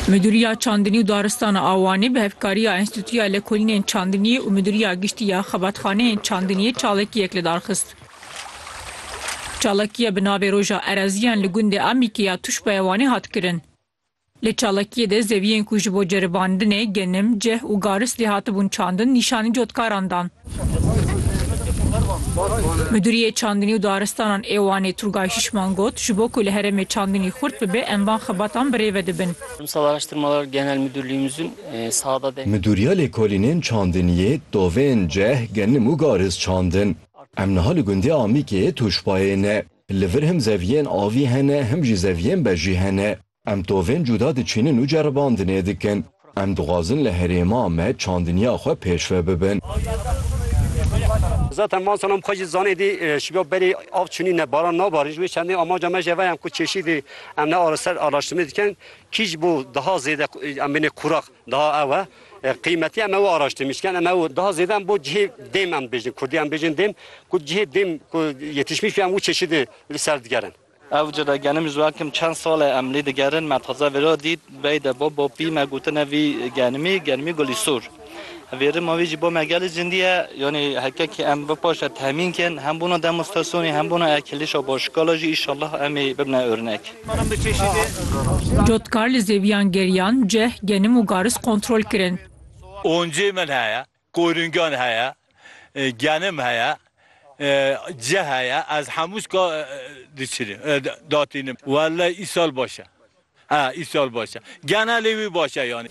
Midûriya Çandinî û Daristana a Wanê bi hevkariya Enstîtuya Lekolînên Çandiniyê û Midûriya Giştî ya Xebatxaneyên Çandiniyê çalakiyek li dar xist. Çalakiye bi navê Roja Ereziyan li gundê Amîkê ya Tuşba ya Wanê hat kirin. Li çalakiyê de zeviyên ku ji bo ceribandinê, genim, cih û garis lê hatibûn çandin nîşanî cotkaran dan. Midûriyê Çandinî û Daristanan ê Wanê Turgay Şişman got, Ji bo ku li herêmê çandinî xurt bibe em van xebatan bi rêve dibin. Midûriya Lêkolînên Çandiniyê, Tovên, Ceh, Genim û Gariz çand in. Em niha li gundê Amîkê yê Tûşbayê ne. Li vir him zeviyên avî hene him jî zeviyên bejî hene. Em tovên cuda diçînin û ceribandinê dikin. Em dixwazin li herêma me çandinya xwe pêşve bibin. Zaten van salan xwe jî zanî dî şiga berî av çûnî ne baran nabarin. Ji wê çendê amaca me jî veyem ku çêşî dî em ne ara ser araştirmê dikin kî ji bo daha zêde em bêne kuraq daha ew e. Qîmetî em ew araştirmê dikin em ew daha zêde em bo cihê dêm em dibêjin kurdî em dibêjin dêm ku cihê dêm ku yetişmîş bî em wî çêşî dî li ser digerin. Ew cî de genim ji we kim çend sal e em lî digerin, me taze vê re dît, bey de bo bo pî me gotine vî genimî, genimî gulî sûr. Vê rima vî jî bo me gelî cindî ye, yanî heke ke em vi paşê tehmîn kin, hem bona demostrasyonê, hem bona ekilîşa başikala jî îşallah em ê bibine örnek. Cotkarli zêwiyan geriyan, ceh, genim û garis kontrol kirin. Oncê min heye. Koringan heye, genim heye, cih heye, ez hemû şka diçinim, datînim. Wellay îsal baş e. He, îsal baş e. Genelê wî baş e yanî.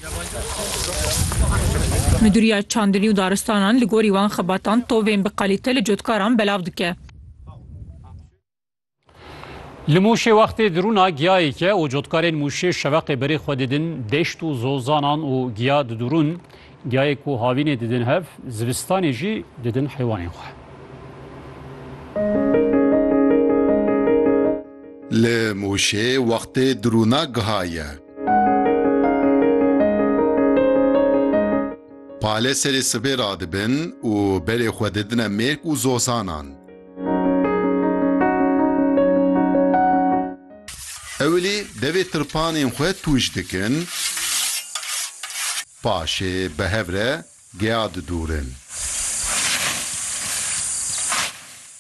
Midûriya Çandinî û Daristanan li gorî wan xebatan tovên bi qalîte li cotkaran belav dike. Li Mûşê wextê dirûna giyayeke û cotkarên Mûşê şeveqê berê xwe didin, deşt û zozanan û giya didûrûn. Giyayê ku havînê didin hev, zivistanê jî didin heywanên xwe. Li Mûşê wextê dirûna giha ye. Pale serê sibê radibin û berê xwe didine mêrk û zozanan. Ewilî devê tirpanên xwe tûj dikin, paşê bi hev re geya didûrin.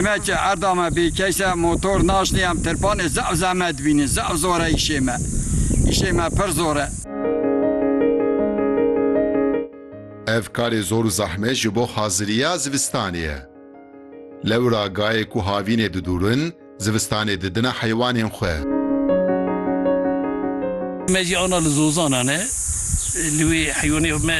Me ke erda me bêkeş e, motor naşnê, em tirpanê zaf zehmet dibînin. Zaf zor e îşê me. Îşê me pir zor e. Ev karê zor û zehmet ji bo haziriya zivistanê ye. Lewra gayê ku havînê didûrin, zivistanê didine heywanên xwe. Me jî ana li zozanan e. Li wê heywanê me